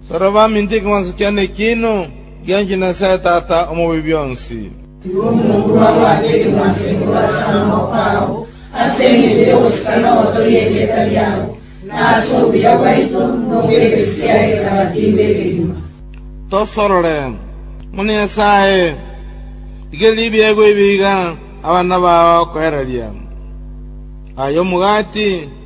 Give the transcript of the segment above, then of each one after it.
Soro baminto ekemanso kiane ekiino, ngianchwe Nyasae Tata Omobi-bionsi. Igo omonto bwabwate ekemanso ekero ase amaboko ao, ase engencho y'ogosika noboto ri'erieta riao, na ase obuya bwaito, na obw'egerechi kiaye kerabatimbe ekenywa. Tosorore, ng'una Nyasae, rigereria ebiegwa ebi iga abana bao bagokoereria. Aya omogati,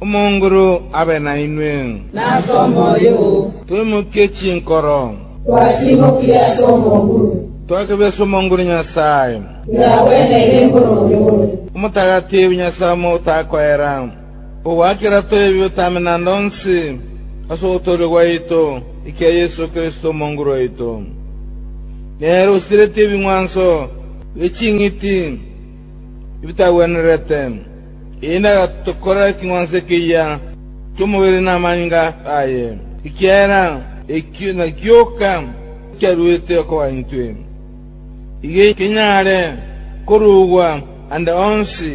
Omonguru abe nainwe. Nase omoyo oo. Twemokie chinkoro. Twatimokire ase omonguru. Twakebesa omonguru Nyasae. Nyiragwene ere mboro oyore. Omotagatifu Nyasae omotakoera, ogwakera tore ebibe tamene ande onsi, ase ogotooria gwaito ekia Yeso Kristo Omonguru oito. Nere osiretie ebing'wanso bie ching'iti. ebitagwenerete, eyi negatokora eking'wanso ekeyia ki'omobere namanyinga aye, ekiagera ekio nagioka kiaruete okoba intwe, iga kenyare korugwa ande onsi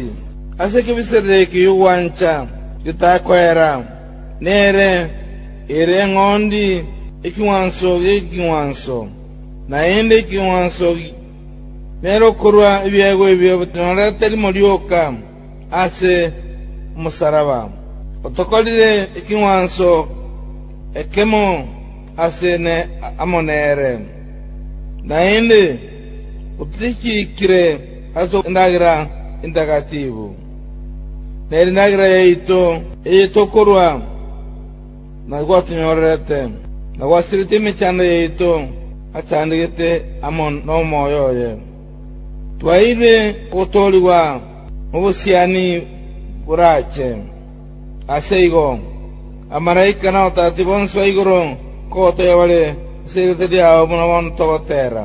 ase ekebiserero eke gi'ogwancha getakoera, nere ere eng'ondi eking'wanso gi'eking'wanso, naende eking'wanso, Nere okorua ebiegwa ebio bitonorete rimo rioka ase omosaraba, otokorire ekeng'wanso ekemo ase ne amo nere, naende otochiikire ase endagera entagatifu, nere endagera yaito eye tokorua. Naki gwatonyorerete, na gwasiretie emechando yaito achandegete amo nomoyo oye. Twaeirwe ogotoorigwa nobosiani borache. Aseigo, abamalaika na abatatati bonsi ba igoro nkogotogia bare ase eritwa riao buna bono togoteera.